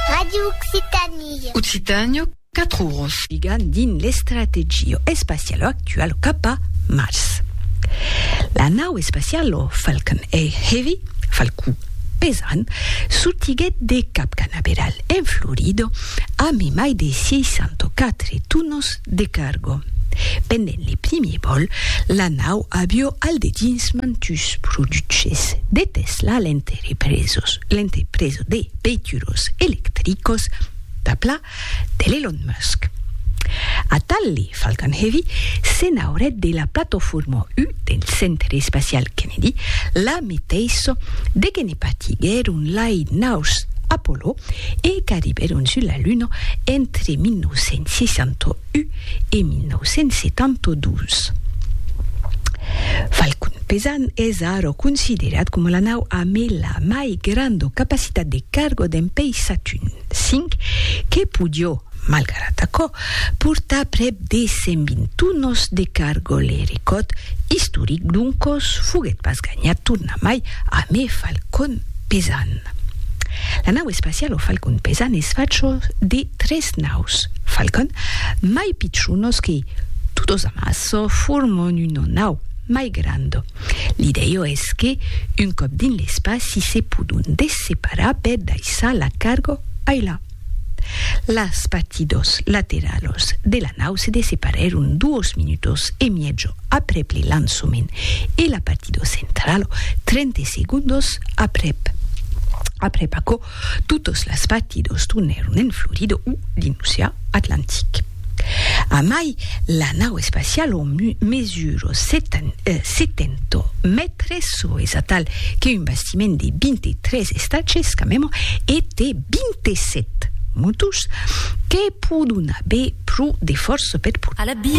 Radio Occitanie. Occitània, 4 oros. Ligan dins l'estrategia espaciala actuala cap a Mars. La nau espaciala Falcon Heavy, Falcon pesant, sortiguèt de Cap Canaveral, en Florida, amb un mai de 64 tonas de carga. Pendent le primier vòl, la nau avió al dedins mantus produches de Tesla a l'interior. e presos l'entrepresa de veituros electricos d'Apla de l'Elon Musk. Atalli Falcon Heavy se n'aurèt de la platofòrma U del Centre Espacial Kennedy, la meteissa de que ne partiguèron lai naus Apollo e qu'arribèron sus la Luna entre 1968 U e 1972. Falcon Pesan es ara considerat coma la nau amb la mai granda capacitat de carga dempei Satun V, que podió, malgrat aquò, portar prèp de 120 tonas de carga. Le recòrd istoric, d'un còs, foguèt pas ganhat tornamai amb e Falcon Pesan. La nau espaciala Falcon Pesan es facha de Tres naus Falcon mai pichonos que, todos amasso, formon una nau mai granda. L'idèia es que, un còp dins l'espaci, se pòdon desseparar per daissar la carga ailà. Las partidas lateralas de la nau se desseparèron duas minutas e mièja aprèp le lançament e la partida centrala, 30 segondas aprèp. Aprèp aquò, Totes las fatidos tornèron en Florida o dins l'oceà Atlantic. A mai, la nau espaciala mesura 70 mètres, çò es atal que un bastiment de 23 estages, camèman, e té 27 motors que pòdon aver pro de fòrça per portar.